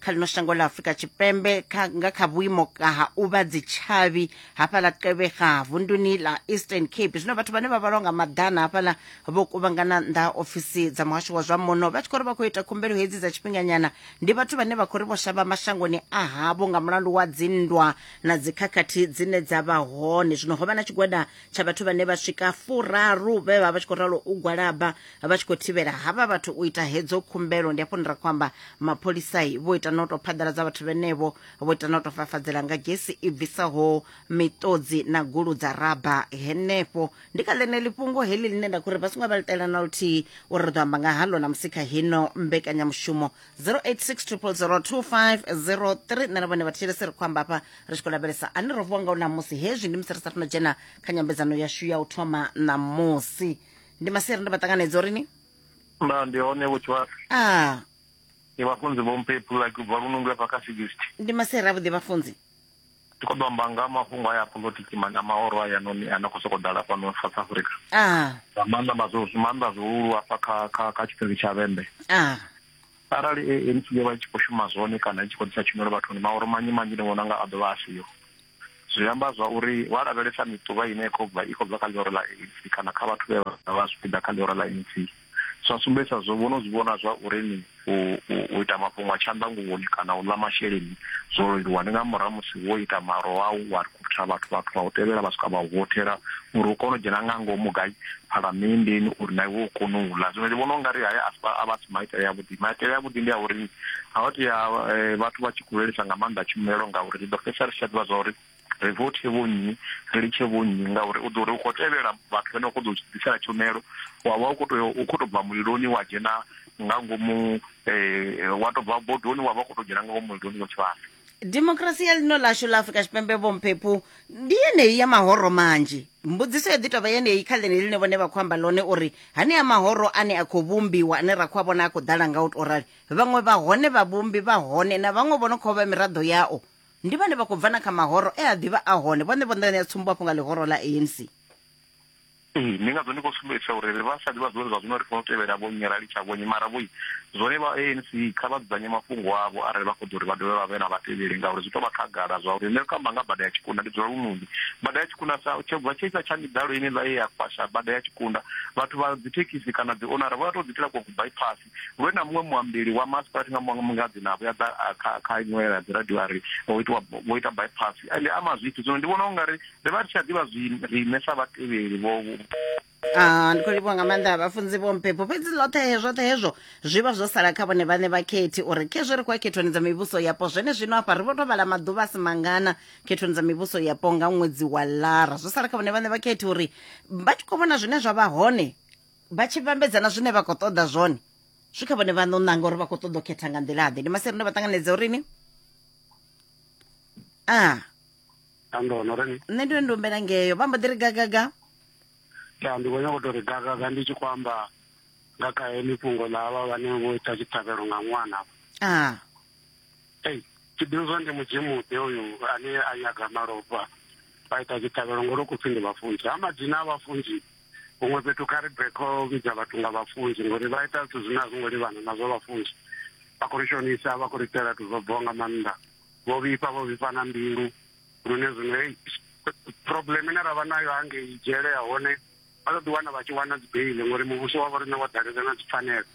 kha lino shango ḽa afurika tshipembe nga kha vhuimo ha u vha dzitshavhi hafhaḽa tevhega vunduni ḽa eastern cape zwino vhathu vhane vha vhalwa nga maḓana hafhaḽa vho kuvhangana nnḓa ofisi dza muhasho wa zwa muno vha tshi khou ri vha khou ita khumbelo hedzi dza tshifhinganyana ndi vhathu vhane vha khou ri vho shavha mashangoni a havho nga mulandu wa dzinndwa na dzikhakhathi dzine dza vha hone zwino ho vha na tshigwada tsha vhathu vhane vha swika furaru vhe vha vha tshi khou ralo u gwalaba vha tshi khou thivhela havha vhathu u ita hedzo khumbelo ndi afho ndira khou amba mapholisai vho ita no tou phaḓaladza vhathu vhenevho vho ita no tou fafadzela nga gesi i bvisaho miṱodzi na gulu dza raba henefho ndi kha ḽeneḽi fhungo heḽi ḽine nda khou ri vha songo vha ḽitela na luthihi uri ri ḓo amba nga haḽo na musi kha hino mbekanyamushumo 0860002503 nṋe na vhone vhathetshelesi ri khou amba hafha ri tshi khou lavhelesa ane ro vuwa nga u ṋamusi hezwi ndi musi ri sa funa dzhena kha nyambedzano yashu ya u thoma ṋamusi ndi maseri ndi maṱanganedza uri ni nda ndi hone vhutshivhasa a ndi vhafunzi vho mpepu like ubva lunungu afha kha sixty ndi maseri avhuḓi vhafunzi ndi khou ḓo amba nga mafhungo aya politiki ma- na maoro aya noni a no khou sokou ḓala fhano south africa a nga maanḓa mazwo maanḓa zwihulu afha kha kha kha tshipiri tsha vhembe a arali ANC yo vha i tshi khou shuma zwone kana i tshi khou ḓisa tshumelo vhathuni maoro manzhi manzhi ndi vhona nga a ḓovha a siho zwi amba zwa uri wa lavhelesa miṱuvha ine khou bva i khou bva kha ḽihoro ḽa ANC kana kha vhathu vhe vha vha zwipiḓa kha ḽihoro ḽa ANC zwa sumbedzisa zwo vhono zwi vhona zwa uri ni u ita mafhungo a tshanḓanguvhoni kana u ḽa masheleni zwo leluwa ndi nga murahu musi wo ita maro wau wa rikhutha vhathu vhathu vha u tevhela vha swika vha u votela uri u kone u dzhena nga ngomu gai phalamenndeni uri na iwe u kone u ḽa zwino ndi vhona u nga ri haya a vha maitele a vhuḓi maitele a vhuḓi ndi a uri a vha tea eh, vhathu vha tshi khou lelisa nga maanḓa tshumelo ngauri ri ḓo fhedzisa ri tshi tsha ḓivha zwa uri ri vothe vhonnyi ri litshe vhonnyi ngauri u ḓo uri u khou tevhela vhathu vhane vha khou ḓo ḓisela tshumelo wa vha u khou tou u khou tou bva muliloni wa dzhena nga ngomu um wa tou bva bodoni wa vha u khou tou dzhena nga ngomu muliloni wa tshivhasa dimokirasi ya ḽino ḽashu ḽa afurika tshipembe vhomphephu ndi yeneyi ya mahoro manzhi mbudziso yo ḓi tovha yeneyi kha ḽene ḽine vhone vha khou amba ḽone uri hanea mahoro ane a khou vhumbiwa ane ra khou a vhona a khou ḓala nga u tou rali vhaṅwe vha hone vhavhumbi vha hone na vhaṅwe vho no khou vha miraḓo yao ndi vhane vha khou bva na kha mahoro e a ḓivha a hone vhone vho ṋea tsumbo afho nga ḽihoro ḽa anc Ee, ndi ngazwo ndi khou sumbedzisa uri ri vha sa ḓivha zwori zwa zwino ri fanela u tevhela vho nnyi, ra litsha vho nnyi. Mara vhoi, zwone vha ANC kha vha dzudzanye mafhungo avho arali vha khou ḓo ri vha dovhe vha vhe na vhatevheli ngauri zwi tou vha khagala zwa uri nṋe ndi khou amba nga bada ya Tshikunda, ndi dzula Lunoni. Bada ya Tshikunda sa tsho bva tshe tsha miḓalo yeneiḽa ye ya kwasha bada ya Tshikunda, vhathu vha dzithekhisi kana dzi onara vho ya tou ḓi itela kwa ku bypass. vhe na muṅwe muambeli wa masipati nga muṅwe nga dzina a vhuya ḓa kha kha iṅwe ya dzi radio a ri ho itiwa vho ita bypass ende ama zwithu zwino ndi vhona u nga ri ri vha ri tshi a ḓivha zwi riṋe sa vhatevheli vho Ah, ndi khou livhuwa nga maanḓa a vhafunzi vho mpepo fhedzi ḽoṱhe zwoṱhe hezwo zwi vha zwo sala kha vhone vhaṋe vha khethi uri khezwi ri khou ya khethoni dza mivhuso yapo zwene zwino afha ri vho to vhala maḓuvha a si mangana khethoni dza mivhuso yapo nga ṅwedzi wa lara zwo sala kha vhone vhaṋe vha khethi uri vha tshi khou vhona zwine zwa vha hone vha tshi vhambedza na zwine vha khou ṱoḓa zwone zwi kha vhone vhaṋe u ṋanga uri vha khou ṱoḓa u khetha nga nḓila ḓe ndi maseri ndo vha ṱanganedza uri ni a ah. andono ri nṋe ndi ndi humbela ngeyo vha mbo ḓi ri gagaga ya ndi khou nyanga u tou ri gagaga ndi tshi khou amba nga kha heḽi fhungo ḽa havha vhane vho ita tshiṱhavhelo nga ṅwana a ah. ei tshiduzwa ndi mudzimuḓe uyu ane a nyaga malofha vha ita tshiṱhavhelo ngori u khou pfhi ndi vhafunzi ha madzina a vhafunzi huṅwe fhethu kha ri bve kho vhidza vhathu nga vhafunzi ngori vha ita zwithu zwine a zwi ngo livhana na zwa vhafunzi vha khou ri shonisa vha khou ri itela zwithu zwo bvaho nga maanḓa vho vhifha vho vhifha na mbilu lune zwino hei problem ine ra vha nayo hangei dzhele ya hone vha ḓo ḓiwana vha tshi wana dzi beile ngori muvhuso wa vho riṋe wa dalela na dzi pfanelo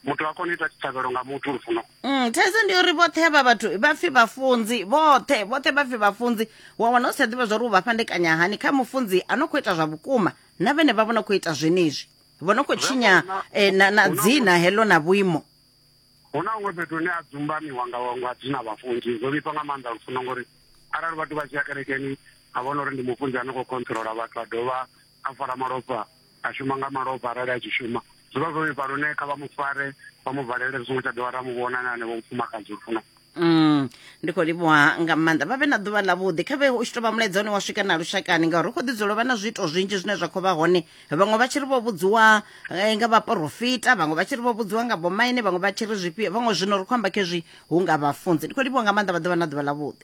muthu ha koni ita tshiṱhavhelo nga muthu lufuno mm, thaidzo ndi uri vhoṱhe havha vhathu vha pfi vhafunzi vhoṱhe vhoṱhe vha pfi vhafunzi wa wana u si tsha ḓivha zwa uri u vha fhandekanya hani kha mufunzi a no khou ita zwa vhukuma na vhene vha vho no khou ita zwenezwi vho no khou tshinya eh, na, na dzina heḽo na vhuimo hu na huṅwe fhethu hune a dzumbamiwa nga nga dzina vhafunzi zwo vhifha nga maanḓa lufuno ngori arali vhathu vha tshi ya kerekeni a vhona uri ndi mufunzi a no khou controla vhathu a dovha a fara malofha a shuma nga malofha arali a tshi shuma zwi vha zwo vhifha lune kha vha mu fare vha mu valele ri songo tsha dovha ra mu vhona na hanevho mufumakadzi uri funa Mm, ndi khou livhuwa nga maanḓa vha vhe na ḓuvha ḽavhuḓi kha vhe u tshi tou vha mulaedza une wa swika na lushakani ngauri ri khou ḓi dzula vha na zwiito zwinzhi zwine zwa khou vha hone vhaṅwe vha tshi ri vho vhudziwa eh, nga vhaporofita vhaṅwe vha tshi ri vho vhudziwa nga bomaine vhaṅwe vha tshi ri zwifhio vhaṅwe zwino ri khou amba khezwi hu nga vhafunzi ndi khou livhuwa nga maanḓa vha ḓuvha na ḓuvha ḽavhuḓi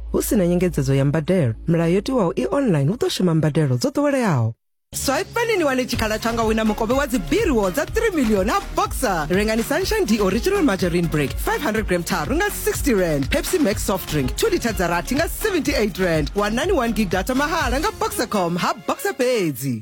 Hu si na nyengedzedzo ya mbadelo, milayo yo tiwaho i online hu ḓo shuma mbadelo dzo ḓoweleaho. Swaipani ni wane tshikhala tsha nga wina mukovhe wa dzibiriwo dza 3 million ha boxer rengani sunshine d original margarine break 500 gram tharu nga 60 rand pepsi max soft drink 2 liter dza rathi nga 78 rand wanani 1 gig data mahala nga boxercom ha boxer fhedzi